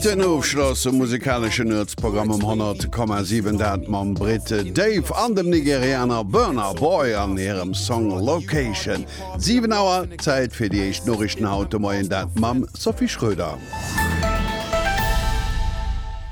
Den Ofschloss um musikaleschen Nuetsprogramm um 100,7, dat mam Brit Dave an dem Nigerianer Burna Boy an hirem Song Location. 7 Auer, Zäit fir déi éischt Noriichten haut de Moien, dat mam Sophie Schröder.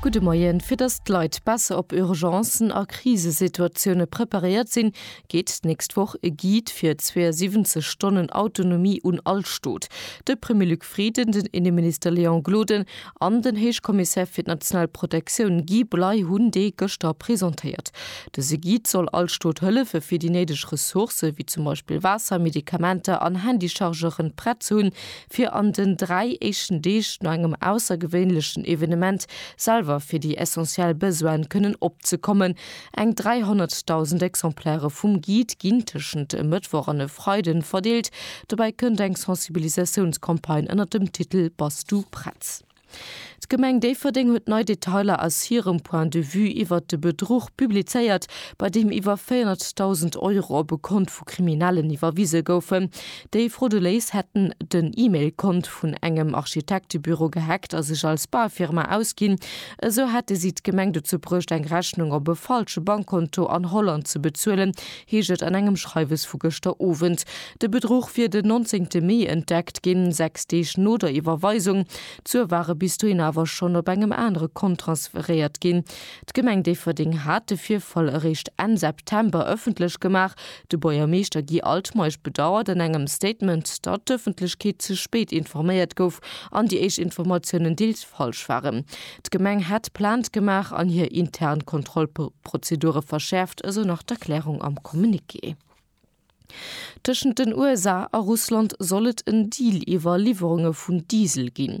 Gudde Moien. Fir datt d'Leit besser op Urgencen a Krisesituatioune preparéiert sinn, geet d'nächst Woch e Guide fir 72 Stonnen Autonomie un all Stot. De Premier Luc Frieden, den Inneminister Léon Gloden an den Héichkommissär fir d'national Protektioun Guy Bley hunn dee gëschter presentéiert. Dëse Guide soll all Stot hëllefe fir déi néideg Ressourcë wéi zum Beispill Waasser, Medikamenter an Handychargeuren prett ze hunn, fir an den dräi éischten Deeg no engem aussergewéinlechen Evenement selwer fir déi essentiell Besoine kënnen opzekommen, Eng 300.000 Exemplaire vum Guide ginn tëschent e Mëttwoch an e Freiden verdeelt. Dobäi kënnt eng Sensibilisatiounscampagne ënner dem Titel Bass du prett? D'Gemeng Déifferdeng huet nei Detailer aus hirem Point de Vue iwwert de Bedruch publizéiert, bei deem iwwer 400.000 Euro op e Kont vu Kriminellen iwwerwise goufen. Déi Frauduléis hätten den E-Mail-Kont vun engem Architektebüro gehackt a sech als Baufirma ausginn. Esou hätte si d'Gemeng dozou bruecht, eng Rechnung op e falsche Bankkonto an Holland ze bezuelen, heescht et an engem Schreiwes vu gëschter Owend. De Bedruch wier den 19 Mee entdeckt ginn, sechs Deeg no der Iwwerweisung. D'Sue ware bis dohin awer schonn op engem anere Kont transferéiert ginn. D'Gemeng Déifferdeng hat de Virfall eréischt Enn September ëffentlech gemaach, De Buergermeeschter Guy Altmeisch bedauert an engem Statement, datt d'Ëffentlechkeet ze spéit informéiert gouf an déi éischt Informatiounen deels falsch waren. D'Gemeng hätt Plainte gemaach an hir intern Kontrollprozedure verschäerft, esou nach d'Erklärung am Communiqué. Tëschent den USA a Russland soll et en Deal iwwer Liwwerunge vun Diesel ginn.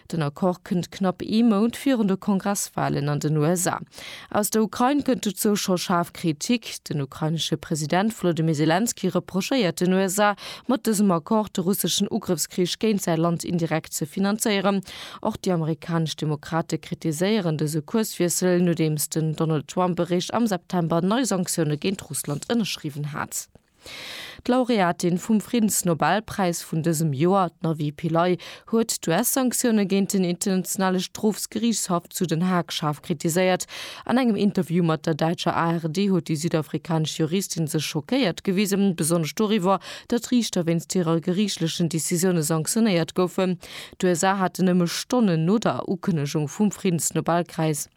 Den Accord kënnt knapp ee Mount virun de Kongresswalen an den USA. Aus der Ukrain kënnt dozou scho schaarf Kritik. Den ukrainesche President Volodymyr Selenskyj reprochéiert den USA, mat dësem Accord de russeschen Ugrëffskrich géint säi Land indirekt ze finanzéieren. Och déi amerikanesch Demokrate kritiséieren dëse Kurswiessel, nodeems den Donald Trump eréischt am September nei Sanktioune géint Russland ënnerschriwwen hat. D'Laureatin vum Friddensnobelpräis vun dësem Joer, d'Navi Pillay, huet d'US-Sanktioune géint den Internationale Strofsgeriichtshaff zu Den Haag schaarf kritiséiert. An engem Interview mat der däitscher ARD huet déi südafrikanesch Juristin sech schockéiert gewisen, besonnesch doriwwer, datt Riichter wéinst hirer geriichtlechen Decisioune sanktionéiert goufen. D'USA haten nëmme Stonnen no der Ukënnegung vum Friddensnobelkräis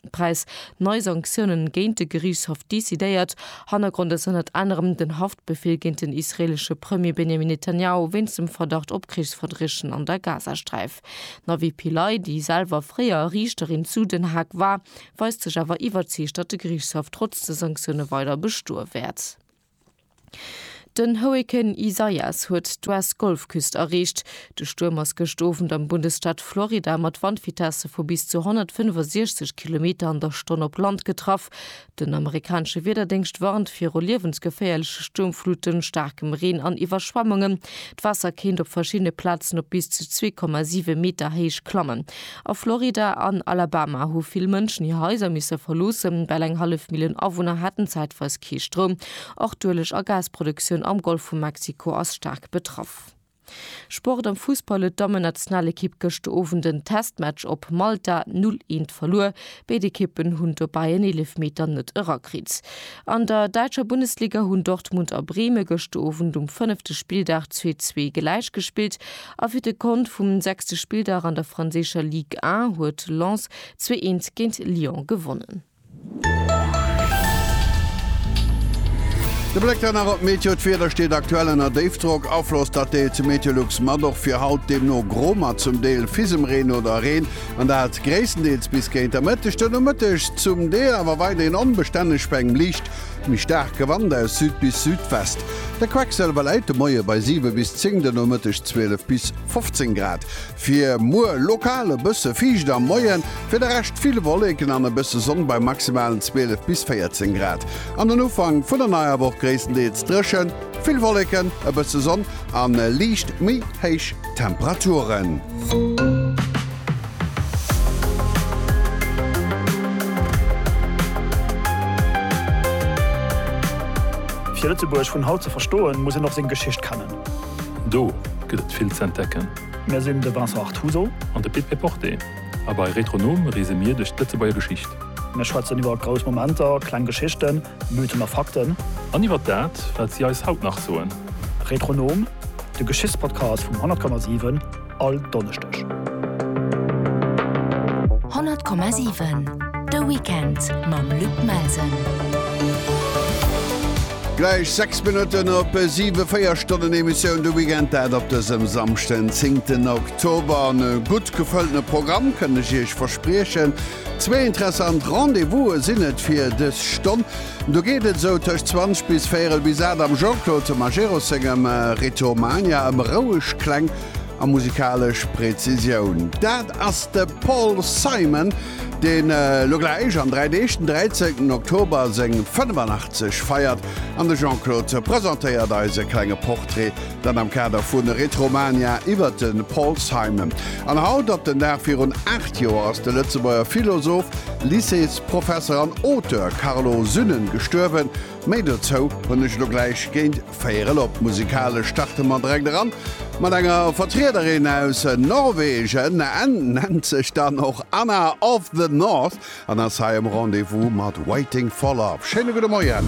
nei Sanktiounen géint de Geriichtshaff decidéiert. Hannergrond ass ënnert anerem den Haftbefeel géint den israeelesche Premier Benjamin Netanjahu wéinst dem Verdacht op Krichsverbriechen an der Gazasträif. D'Navi Pillay, déi selwer fréier Riichterin zu Den Haag war, weist sech awer iwwerzeegt, datt de Geriichtshaff trotz de Sanktioune weider bestoe wäert. Den Hurrikan Isaias huet d'US-Golfküst erreecht. De Stuerm ass gëscht Owend am Bundesstaat Florida mat Wandvitesse vu bis zu 165 Kilometer an der Stonn op Land getraff. Den amerikanesche Wiederdéngscht warnt viru liewensgeféierleche Stuermfluten, staarkem Reen an Iwwerschwemmungen. D'Waasser kéint op verschiddene Plazen op bis zu 2,7 Meter Héicht klammen. A Florida an Alabama hu vill Mënschen hir Haiser misse verloossen, well eng hallef Millioun Awunner haten zäitweis kee Stroum. Och d'Ueleg a Gasproduktioun am Golf vu Mexiko ass staark betraff. Sport am Fussball huet d'Dammennationalekipp gëschter Owend en Testmatch op Malta 0, 1 verluer. Béid Ekippen hunn dobäi en Eelefmeter net erakritt. An der däitscher Bundesliga hunn Dortmund a Breme gëschter Owend um fënnefte Spilldag zwee zwee gläich gespillt a fir de Kont vum sechste Spilldag an der franséischer Ligue 1 huet Lens zwee eent géint Lyon gewonnen. De Bléck dann nach op d'Meteo, D'Wieder steet aktuell ënner Déifdrock, Afloss dat deelt zu Meteolux mat, och fir haut deemno gro mat zum Deel Fisemreen oder Reen, an dat gréisstendeels bis géint der Mëtteg. De Nomëtteg zum Deel awer weiderhin onbestänneg bei engem liicht méi staarke Wand aus Süd bis Südwest. De Quecksëlwer läit de Moie bei 7 bis 10, de Nomëtteg 12 bis 15 Grad. Fir muer lokal e bësse fiicht am Moien, fir de Rescht vill Wolleken an e bësse Sonn bei maximalen 12 bis 14 Grad. An den Ufank vun der neier Woch gréisstendeels dréchen, vill Wolleken, e bësse Sonn a liicht méi héich Temperaturen. Fir Lëtzebuerg vun haut ze verstoen, muss een och seng Geschicht kennen. Do gëtt et vill ze entdecken. Mir sinn de Vincent Artuso. An de Pit Péporté. A bei Retronom reese mir duerch d'Lëtzebuerger Geschicht. Mir schwätzen iwwer grouss Momenter, kleng Geschichten, Mythen a Fakten. An iwwer dat, wat si eis haut nach soen. Retronom, de Geschichtspodcast vum 100,7, all Donneschdeg. 100,7 De Weekend mam Luc Melsen. Gläich 6 Minutten op 7, 4 Stonnen Emissioun de Weekend dat op dësem Samschden 10 Oktober. An e gutt gefëlltene Programm kënnt ech Iech verspriechen. Zwee interessant Rendez-vouse sinn et fir dës Stonn. Do geet et esou tëscht 20 bis véierel bis 8 am Jean-Claude Majerus sengem Ritomania ëm roueg Kläng a musikalesch Prezisioun. Dat ass de Paul Simon. deen elo gläich an dräi Deeg den 13 Oktober seng 85 feiert an de Jean-Claude presentéiert eis e klenge Portrait, dat am Kader vu Retromania iwwert de Paul Simon. An haut op den Dag virun 8 Joer ass de Lëtzebuerger Philosoph, Lycéesprofesser an Auteur Carlo Synnen gestuerwen. Méi dozou hunn ech lo gläich géint 4 Elop. Musikalesch starte mer direkt eran mat enger Vertriederin aus Norwegen. En nennt sech dann och Anna of the North an ass hei am Rendez-vous mat Waiting for Love. Schéine gudde Moien.